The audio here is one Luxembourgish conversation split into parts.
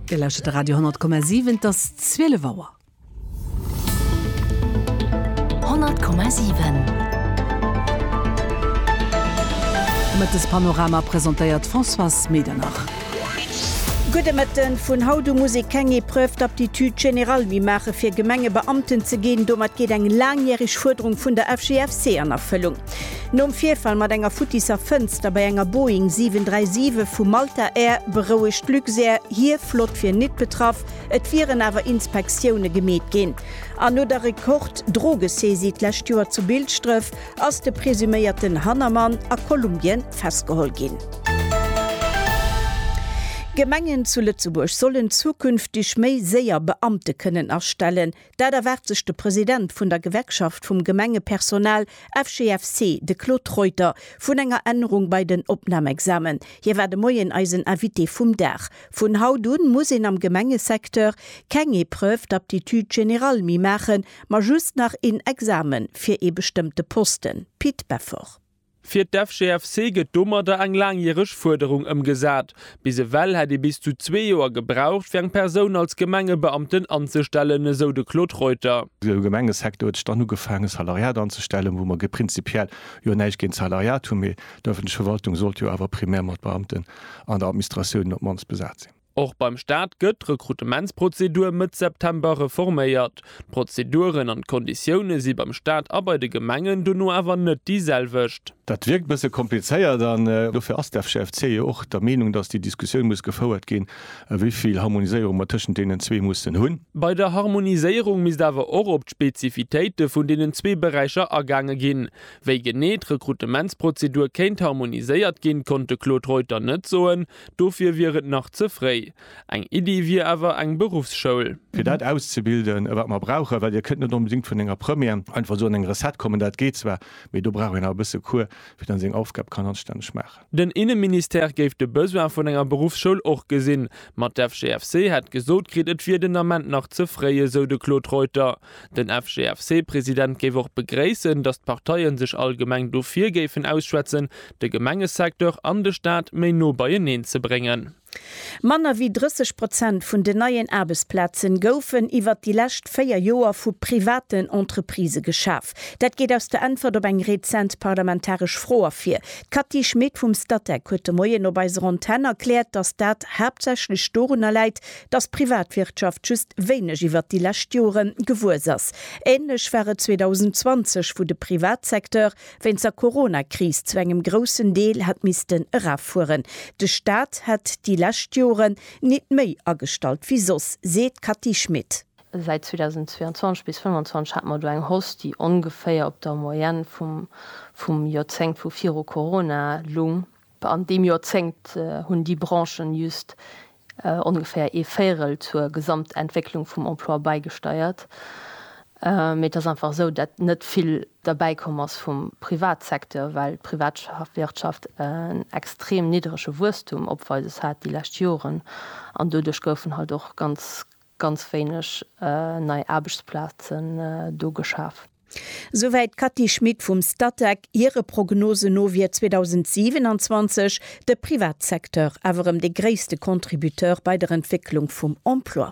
Dir lauschtert de Radio 10,7, et ass 12 Auer. 100,7 Mëttespanorama presentéiert d'Françoise Medernach. Gudde Mëtten, Vun haut u muss ee keng Épreuve d'aptitude générale méi maache fir Gemengebeamten ze ginn. Domat geet eng laangjäreg Fuerderung vun der FGFC an Erfëllung. Nom Virfall mat enger futtisser Fënster bei enger Boeing 737 vu Malta Air berouegt d'Luxair hir Flott fir nit betraff, et wieren awer Inspektioune gemeet ginn. An no der Rekord-Drogesaisie d'lescht Joer zu Bilschdref ass de presuméierten Hannermann a Kolumbien festgeholl ginn. Gemengen zu Lëtzebuerg sollen zukünfteg méi séier Beamte kënnen astellen. Dat erwaart sech de President vun der Gewerkschaft vum Gemengepersonal, FGFC, de Claude Reuter, vun enger Ännerung bei den Opnamexamen. Hie war de Moien eisen Invité vum Dag. Vun haut un muss een am Gemengesecteur keng Épreuve d'aptitude générale méi maachen, ma just nach een Examen fir ee bestëmmte Posten. Pit Beffort. Fir d'FGFC gëtt domadder eng laangjäreg Fuerderung ëmgesat. Bis ewell hätt ee bis zu zwee Joer gebraucht, fir eng Persoun als Gemengebeamten anzestellen, esou de Claude Reuter. De Gemengesecteur huet sech dann ugefaangen, Salariat anzestellen, wou mer prinzipiell jo näischt géint d'Salariat hunn, mee d'ëffentlech Verwaltung sollt jo awer primär mat Beamten an der Administratioun op d'mannst besat sinn. Och beim Staat gëtt d'Rekrutementsprozedur Mëtt September reforméiert. D'Prozeduren an d'Konditioune si beim Staat a bei de Gemengen dono awer net déi selwecht. Dat wierkt e bësse komplizéiert an dofir ass d'FCFC jo och der Meenung, datt déi Diskussioun muss gefouert ginn, wéi vill Harmoniséierung mer tëschent deenen zwee mussen hunn. Bei der Harmoniséierung misst awer och op d'Spezifitéite vun deenen zwee Beräicher agaange ginn. Wéi genee d'Rekrutementsprozedur kéint harmoniséiert ginn, konnt de Claude Reuter net soen, Dofir wier et nach ze fréi. Eng Iddi wier awer eng Beruffsschoul. Fir dat auszebilden, wat mer brauchen, well Dir kënnt net onbedéngt vun enger Première einfach esou an eng Recette kommen, dat geet zwar, mee do brauch een awer e bësse Cours, fir dann seng Aufgab kann anstänneg maachen. Den Inneministère géif de Besoin vun enger Beruffsschoul och gesinn, ma d'FGFC hätt gesot kritt, et wier den Ament nach ze fréi, esou de Claude Reuter. Den FGFC-President géif och begréissen, datt d'Parteien sech allgemeng dofir géifen ausschwätzen, de Gemengesecteur an de Staat méi no beieneen ze bréngen. Manner wéi 30 Prozent vun den neien Aarbechtsplaze goufen iwwert déi lescht véier Joer vu privaten Entreprisë geschaf. Dat geet aus der Äntwert op eng rezent parlamentaresch Fro ervir. D'Cathy Schmit vum Statec huet de Moien op eiser Antenn erkläert, datt dat haaptsächlech dorunner läit, dass d'Privatwirtschaft just wéineg iwwert déi lescht Jore gewuess ass. Ähnlech war et 2020, wou de Privatsecteur wéinst der Coronakris zu engem groussen Deel hätt missten eraffueren. De Staat hätt déi lescht Joren nit méi agestallt wéi soss, seet d'Cathy Schmid. Säit 2022 bis 2025 hate mer do eng Hausse, déi ongeféier op der Moyenne vum Joerzéngt vu viru Corona lung. An deem Joerzéngt hunn déi Branchen just ongeféier ee Véirel zur Gesamtentwécklung vum Emploi bäigesteiert. Mee et ass einfach esou, dat net vill derbäi komm ass vum Privatsecteur, well d'Privatwirtschaft en extrem niddrege Wuesstum opweises hat déi lescht Joren. An doduerch goufen halt och ganz, ganz wéineg nei Aarbechtsplazen do geschaf. Souwäit d'Cathy Schmit vum Statec. Hire Prognosen no wier 2027 de Privatsecteur awer erëm dee gréisste Contributeur bei der Entwécklung vum Emploi.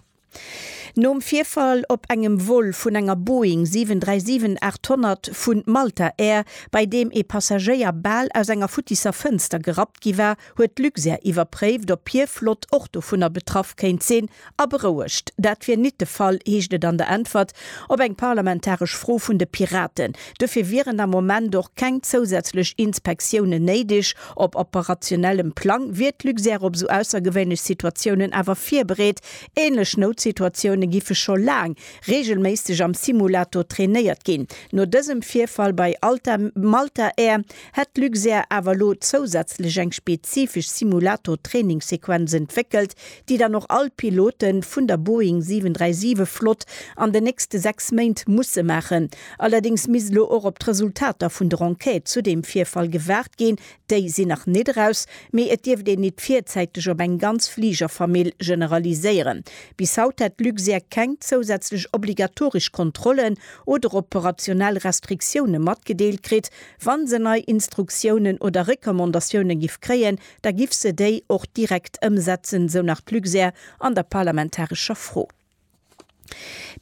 Nom Virfall op engem Vol vun enger Boeing 737 800 vu Malta Air, bei deem ee Passagéier bal aus enger futtisser Fënster gerappt gi war, huet d'Luxair iwwerpréift, ob hir Flott och dovunner betraff kéint sinn, a berouegt. Dat wier nit de Fall, heescht et an der Äntwert op eng parlamentaresch Fro vun de Piraten. Duerfir wieren am Moment och keng zousätzlech Inspektiounen néideg. Op operationellem Plang wier d'Luxair op esou aussergewéinlech Situatiounen awer virbereet. Ähnlech Noutsituatioune giffe scho laang reegelméisseg am Simulator trainéiert ginn. No dësem Virfall bei Alta Malta Air hätt d'Luxair awer elo zousätzlech eng spezifesch Simulator-Trainingssequenz entwéckelt, déi dann och all Pilote vun der Boeing 737 Flott an den nächste 6 Méint musse maachen. Allerdéngs misst elo och op d'Resultater vun der Enquête zu deem Virfall gewaart ginn. Déi sinn nach net eraus, mee et dierft een et virzäiteg op eng ganz Fligerfamill generaliséieren. Bis haut hätt d'Luxair keng zousätzlech obligatoresch Kontrollen oder operationell Restriktioune matgedeelt kritt, Wa se nei Instruktiounen oder Recommandatiounen giff kréien, da giff se déi och direkt ëmsetzen, sou nach d'Luxair an der parlamentarescher Fro.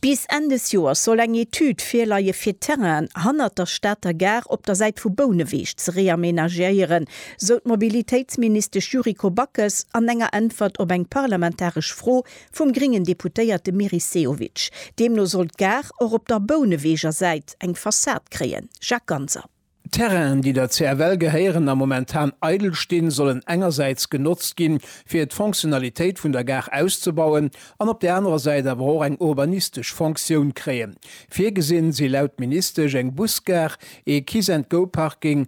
Bis Enn des Joers soll eng Etüd virleie fir d'Terrainen hannert der Stater Gare op der Säit vu Bouneweg ze reamenagéieren, sou d'Mobilitéitsministesch Yuriko Backes an enger Äntwert op eng parlamentaresch Fro Vum gréngen Deputéierte Meris Sehovic. Deemno soll d'Gare och op der Bouneweger Säit eng Fassad kréien, Jacques Ganser. D'Terrainen, déi der CFL gehéieren a momentan eidel stinn, sollen engersäits genotzt ginn, fir d'Fonctionnalitéit vun der Gare auszebauen an op där anerer Säit awer och eng urbanistesch Fonctioun kréien. Virgesinn si laut Ministesch eng Busgare, ee Kiss-and-Go-Parking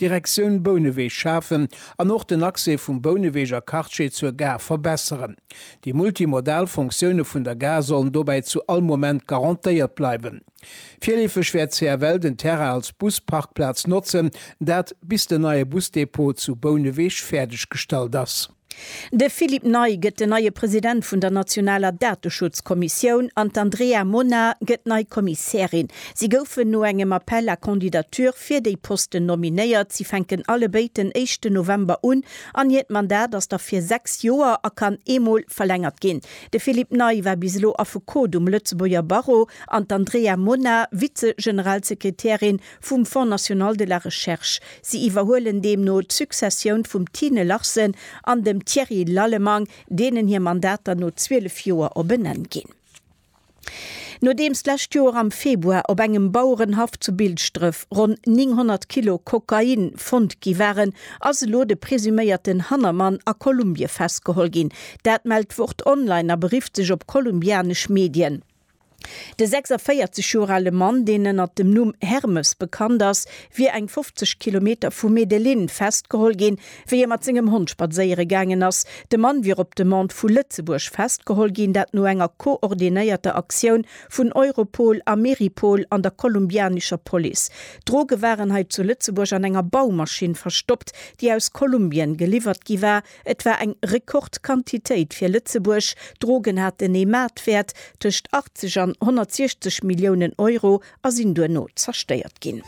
Direktioun Bouneweg schafen an och den Accès vum Bouneweger Quartier zur Gare verbesseren. Déi multimodal Fonctioune vun der Gare sollen dobäi zu all Moment garantéiert bleiwen. Virleefeg wäert CFL den Terrain als Busparkplaz notzen, dat bis den neie Busdepot zu Bouneweg fäerdeggestallt ass. De Philippe Ney gëtt den neie President vun der nationaler Dateschutzkommissioun an d'Andrea Mona gëtt nei Kommissärin. Si goufen no engem Appel à candidatures fir déi Posten nominéiert. Si fänken allebéid den éischten November un an hiert Mandat ass da fir sechs Joer a kann ee Mol verlängert ginn. De Philippe Ney war bis elo Affekot um Lëtzebuerger Barreau an d'Andrea Mona Vize-Generalsekretärin vum Fonds National de la Recherche. Si iwwerhuelen deemno d'Successioun vum Tine Larsen an dem Thierry Lallemand, deenen hir Mandater no 12 Joer op en Enn ginn. Nodeems d'lescht Joer am Februar op engem Bauerenhaff zu Bilschdref ronn 900 Kilo Kokain fonnt gi waren, ass elo de presuméierten Hannermann a Kolumbie festgeholl ginn. Dat mellt d'Wort Online a berifft sech op kolumbianesch Medien. De 46 Joer ale Mann, deen ënnert dem Numm Hermes bekannt ass, wier eng 50 Kilometer vu Medellin festgeholl ginn, wéi e mat sengem Hond spadséiere gaangen ass. De Mann wier op Demande vu Lëtzebuerg festgeholl ginn, dat no enger koordinéierter Aktioun vun Europol a Meripol an der kolumbianescher Police. D'Droge waren hei zu Lëtzebuerg an enger Baumaschinn verstoppt, déi aus Kolumbien geliwwert gi war. Et war eng Rekordquantitéit fir Lëtzebuerg. D'Drogen haten ee Maartwäert tëscht 80 an 160 Milliounen Euro a sinn duerno zerstéiert ginn.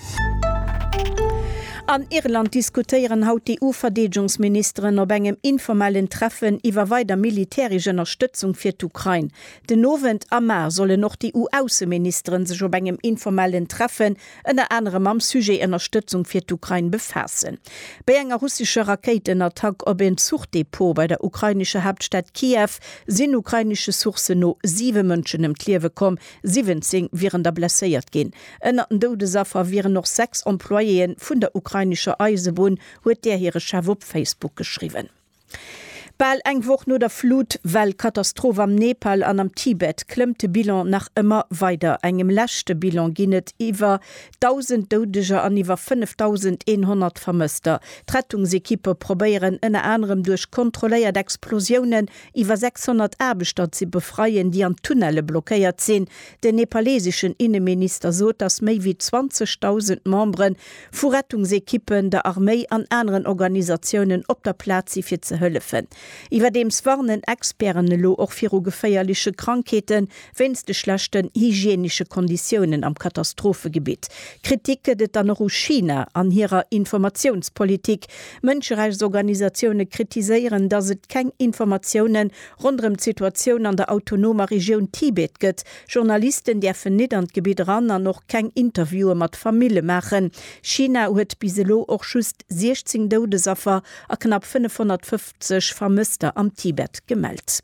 An Irland diskutéieren haut d'EU-Verdeedegungsministeren op engem informellen Treffen iwwer weider militäresch Ënnerstëtzung fir d'Ukrain. Den Owend am Mar sollen och d'EU-Ausseministeren sech op engem informellen Treffen ënner anerem mam Sujet Ënnerstëtzung fir d'Ukrain befaassen. Béi enger russescher Rakéitenattack op en Zuchdepot bei der ukrainescher Haaptstad Kiew sinn ukrainesche Sourcen no 7 Mënschen ëm d'Liewe komm, 17 wieren da blesséiert ginn. Ënnert den Doudesaffer wieren och 6 Employéeën vun der ukrainescher Eisebunn, huet där hire Chef op Facebook geschriwwen. Bal eng Woch no der Flut-Well Katastroph am Nepal an am Tibet klëmmt de Bilan nach ëmmer weider. Engem leschte Bilan ginn et iwwer 1.000 Doudeger an iwwer 5.100 Vermësster. D'Rettungsekippe probéieren ënner anerem duerch kontrolléiert Explosiounen iwwer 600 Aarbechter ze befreien, déi an Tunnelle blockéiert sinn. Den nepaleseschen Inneminister sot, dass méi wéi 20.000 Membere Vu Rettungsekippen, der Arméi an aneren Organisatiounen op der Plaz si fir ze hëllefen. Iwwerdeems warnen Experten elo och viru geféierleche Krankheete wéinst de schlechten hygienesche Konditiounen am Katastrophegebitt. Kritik gëtt et dann och u China an hirer Informatiounspolitik. Mënscherechtsorganisatioune kritiséieren, datt et keng Informatiounen ronderëm d'Situatioun an der autonomer Regioun Tibet gëtt, Journalisten däerfen nit an d'Gebitt eran an och keng Interviewe mat Famille maachen. China huet bis elo och just 16 Doudesaffer a knapp 550 Vermësster am Tibet gemellt.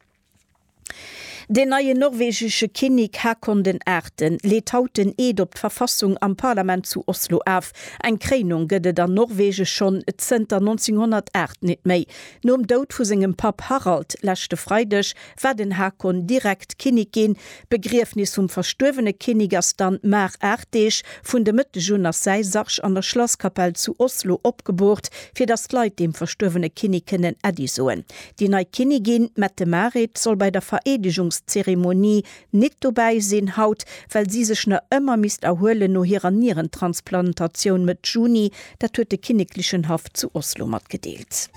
Den neien norwegesche Kinnik Haakon den Aachten leet haut den Eed op d'Verfassung am Parlament zu Oslo af. Eng Kréinung gëtt et an Norwegen schonn zënter 1908 nit méi. Nom Doud vu sengem Papp Harald leschte Freideg war den Hakon direkt Kinnik ginn. D'Begriefnis vum verstuerwene Kinnik ass dann mar aacht Deeg. Vun de Mëtteg un ass säi Sarg an der Schlasskapell zu Oslo opgeboort, fir datt d'Leit deem verstuerwene Kinnik kënnen Äddi soen. Déi nei Kinnigin, d'Mette-Marit, soll bei der Vereedegungszeremonie Nit dobäi sinn haut, well si sech na ëmmer misst erhuelen no hirer Nierentransplantatioun Mëtt Juni, dat huet de kinneklechen Haff zu Oslo matgedeelt.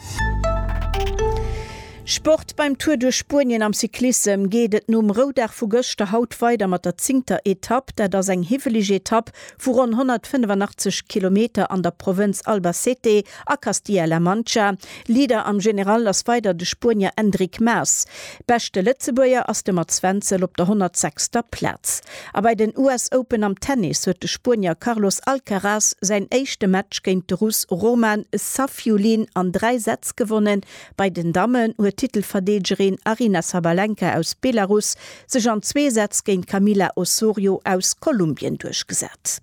Sport, Beim Tour duerch Spuenien am Cyclissem geet et nom Roudag vu gëschter haut weider mat der zéngter Etapp. Dat ass eng hiwweleg Etapp vu ronn 185 Kilometer an der Provënz Albacete a Castilla-La Mancha. Leader am General ass weider de Spuenier Enric Mas. Beschte Lëtzebuerger ass de Mats Wenzel op der 106. Plaz. A bei den US Open am Tennis huet de Spuenier Carlos Alcaraz säin éischte Match géint de Russ Roman Safiullin an dräi Sätz gewonnen. Bei den Dammen huet d'Titelverdeegerin Aryna Sabalenka aus Belarus sech an zwee Sätz géint d'Camila Osorio aus Kolumbien duerchgesat.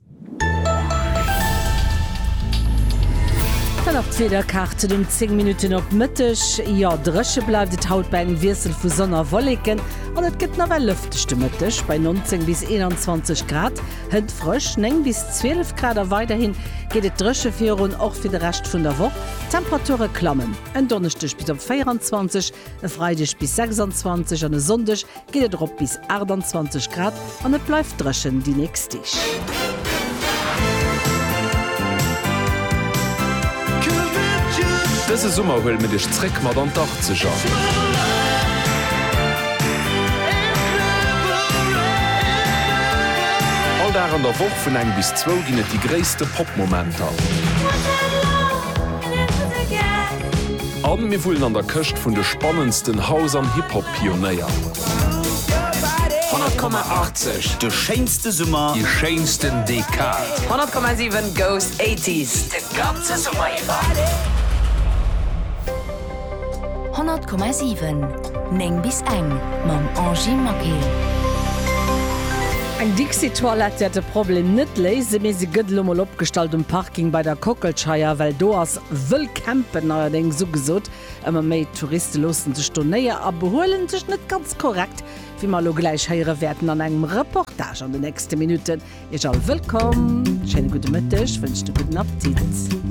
Dann nach d'Wiederkaart zu den 10 Minutten op Mëtteg, Jo, dréche bleift et haut bei engem Wiessel vu Sonn a Wolleken an et gëtt nawell lëfteg de Mëtteg bei 19 bis 21 Grad. Hëlt frësch, 9 bis 12 Grad, a weiderhin geet et dréche virun, och fir de Rescht vun der Woch. D'Temperature klammen en Donneschdeg bis op 24. E Freideg bis 26 an e Sonndeg geet et erop bis 28 Grad an et bleift dréchen déi nächst Deeg. Dëse Summer huele mir dech zréck mat an d'Achtzeger. All Dag an der Woch vun eng bis zwou ginn et déi gréisste Pop-Momenter. A mir wullen an der Këscht vun de spannendsten House an Hip Hop Pionéier. 100,80 de schéinste Summer, déi schéinsten Dekad. 100,7 goes 80s de ganze Summer iwwer. 100,7 9 bis eng mam Angy Maquet. Eng Dixitoilette wäert de Problem net léisen, mee se gëtt elo mol opgestallt um Parking bei der Kockelscheier, well do ass wëll campen, neierdéngs sougesot. Ëmmer méi Touriste loossen sech do néier a behuelen sech net ganz korrekt, wéi mer elo gläich héiere wäerten an engem Reportage an de nächste Minutten. Iech all wëllkomm, schéine gudde Mëtteg, wënscht e gudden Appetit.